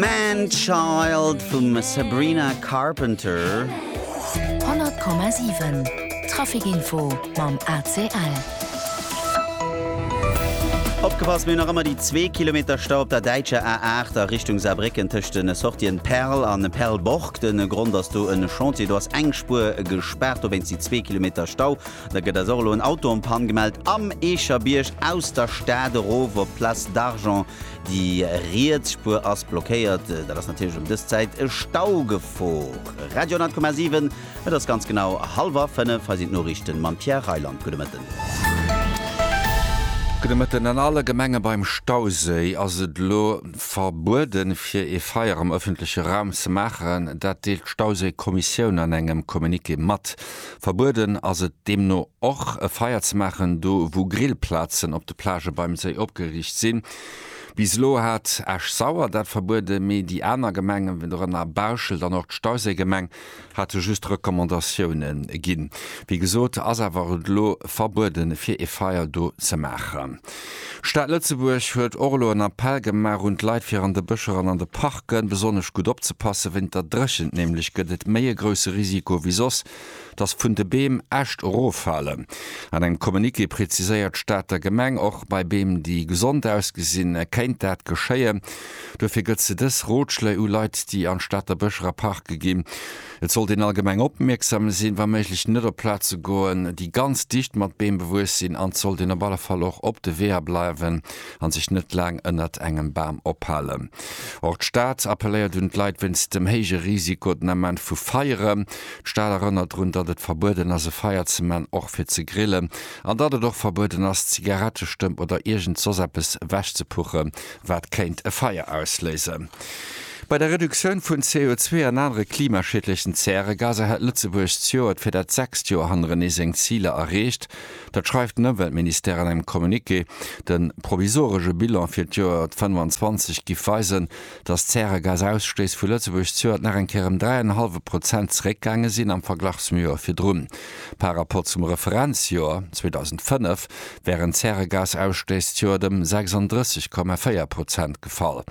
Man Child vum Sabrina Carpenter. 100,7 Trafikinfo mam ACL. Opgepasst, mir hunn nach ëmmer déi zwee Kilometer Stau op der däitscher A8 a Richtung Saarbrécken tëscht den Sortien Perl an Perlborg. De Grond ass do e Chantier, do ass eng Spuer gespaart, dowéinst déi zwee Kilometer Stau. Da gëtt eis och elo en Auto en panne gemellt am Eecherbierg aus der Stad erof op d'Place d'Argent. Déi riets Spuer ass blockéiert. Dat ass natierlech ëm dës Zäit e Stau gefor. Radio 10,7, et ass ganz genau hallwer 5, hei sinn d'Noriichten mam Pierre Reyland. Gudde Mëtten. Gudde Mëtten. An alle Gemenge beim Stauséi ass et elo verbueden, fir ee Feier am ëffentleche Raum ze maachen. Dat deelt d'Stauséi-Kommissioun an engem Communiqué mat. Verbueden ass et deemno och, e Feier ze maachen, do wou Grillplazen op de Plagë beim Séi opgeriicht sinn. Bis elo hat Esch-Sauer dat verbueden, mee déi aner Gemengen, dorënner Bauschelt an och d'Stauséigemeng, hate just Recommandatioune ginn. Wéi gesot, ass awer et elo verbueden, fir e Feier do ze maachen. D'Stad Lëtzebuerg huet och elo en Appell gemaach un d'Leit fir an de Bëscher an an de Parken besonnesch gutt opzepassen. Wéinter Dréchent nämlech gëtt et méi e grousse Risiko wéi soss, dass vun de Beem Äscht eroffalen. An engem Communiqué preziséiert d'Stater Gemeng, och bei Beem déi gesond ausgesinn, kéint dat geschéien. Dofir gëtt se dës Rotschléi u Leit déi an d'Stater Bëscher a Parke ginn. Et sollt een allgemeng opmierksam sinn, wa méiglech net op Plaze goen, déi ganz dicht mat Beem bewuess sinn an et sollt een op alle Fall och op de Weeër bleiwen a sech net laang ënnert engem Bam ophalen. Och d'Stad appelléiert un d'Leit wéinst dem héije Risiko den Ament vu Feieren. D'Stad erënnert drun, datt et verbueden ass e Feier ze man, och fir ze grillen, an datt et och verbueden ass Zigarettestëmp oder iergend soss eppes ewechzepuche wat kéint e Feier ausléisen. Bei der Reduktioun vun CO2 an anere klimaschiedlechen Zäregaser hätt Lëtzebuerg zejoert fir dat sechst Joer hannerenee seng Ziler erreecht. Dat schreift den Ëmweltministère an engem Communiqué. De provisoresche Bilan fir d'Joer 2025 giff weisen, datt d'Zäregasausstouss vu Lëtzebuerg zejoert nach eng Kéier ëm dräi an en hallwe Prozent zeréckgaange sinn am Verglach zum Joer virdrun. Par Rapport zum Referenzjoer 2005 während d'Zäregasausstëss d'Joert ëm 36,4 Prozent gefall.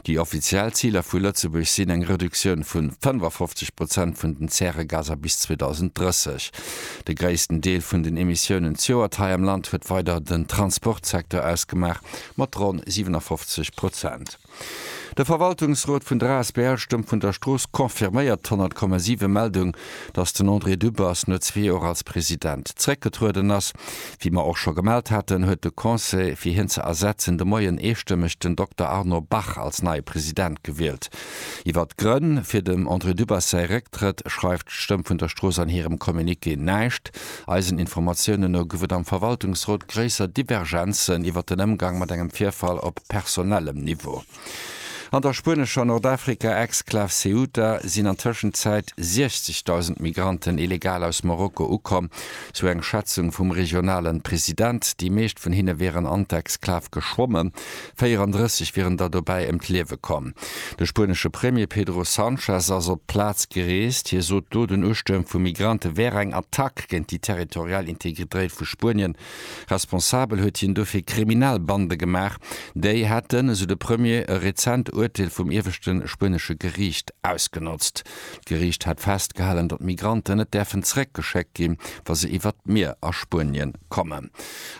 Déi offiziell Ziler vu Lëtzebuerg sinn eng Reduktioun vu 55 Prozent vun den Zäregaser bis 2030. De gréissten Deel vun den Emissiounen d'Joert hei am Land huet weider den Transportsecteur ausgemaach, mat ronn 57 Prozent. De Verwaltungsrot vun der asbl Stëmm vun der Strooss confirméiert d'Honnertkommesive Meldung, datt den André Dübbers no zwee Joer als President zeréckgetrueden ass. Wéi mer och scho gemellt haten, huet de Conseil, fir hien ze ersetzen, de Moien eestëmmeg den Dokter Arnaud Bach als neie President gewielt. Iwwert d'Grënn fir dem André Dübbers säi Récktrëtt schreift d'Stëmm vun der Strooss an hirem Communiqué näischt. Eisen Informatiounen no gouf et am Verwaltungsrot gréisser Divergenzen iwwer den Ëmgang mat engem Virfall op personellem Niveau. An der spuenescher Nordafrika-Exklav Ceuta sinn an Tëschenzäit 60.000 Migranten illegal aus Marokko ukomm, sou eng Schätzung vum regionalen President. Déi meescht vun hinne wieren an d'Exklav geschwommen, 34 wieren der dobäi ëm d'Liewe komm. De spuenesche Premier Pedro Sanchez ass op d'Plaz gereest. Hie sot do, den Ustuerm vu Migrante wär eng Attack géint déi territorial Integritréit vu Spuenien. Responsabel huet hien dofir kriminell Bande gemaach. Déi hätten, esou de Premier, e rezent Urteel vum ieweschte spuenesche Geriicht ausgenotzt. D'Geriicht hätt festgehalen, datt Migranten net däerfen zeréckgeschéckt ginn, wa se iwwert d'Mier a Spuenien kommen.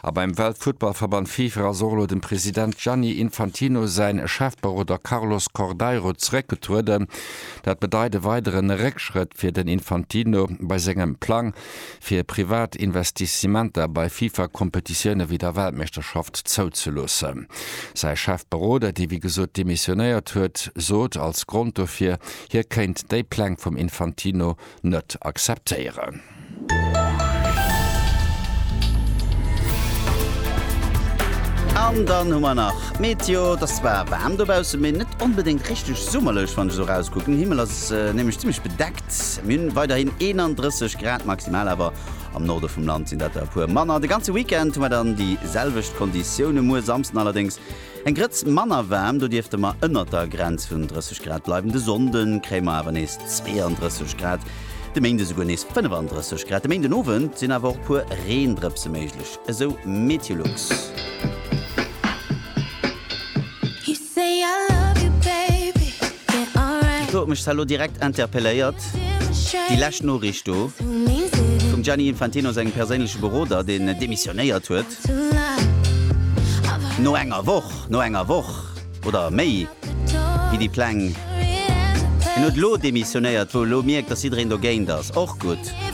A beim Weltfuttballverband FIFA ass och elo dem President Gianni Infantino säin Chefberoder Carlos Cordeiro zeréckgetrueden. Dat bedeit e weideren Réckschrëtt fir den Infantino bei sengem Plang fir privat Investissementer bei FIFA-Kompetitioune wéi der Weltmeeschterschaft zouzeloossen. Säi Chefberoder, dee wéi gesot demissionéiert huet, sot als Grond dofir, hie kéint déi Pläng vum Infantino net akzeptéieren. An dann hu mer nach d'Meteo. Et ass zwar waarm dobaussen, mee net onbedéngt richteg summerlech, wann ech esou erauskucken. Den Himmel ass nämlech zimmlech bedeckt. Mir hunn weiderhin 31 Grad maximal, awer am Norde vum Land sinn dat der e puer manner. De ganze Weekend hu mer dann déi selwecht Konditioune. Muer Samsden allerdéngs Eng Grëtz manner waarm, do dierfte mer ënnert der Grenz vun 30 Grad bleiwen. De Sonnde kréie mer awer nees 32 Grad, de Méinde esouguer nees 35 Grad. De Méindenowend sinn awer och e puer Reendrëpse méiglech, esou Meteolux. Ech huet mech d'Celo direkt interpelléiert, déi lescht Noriicht do vum Gianni Infantino sengem perséinleche Beroder, deen demissionéiert huet. No enger Woch, no enger Woch oder méi gi déi Pläng. Hien huet elo demissionéiert, wou elo mierkt, datt jiddereen dogéint ass. Och gutt.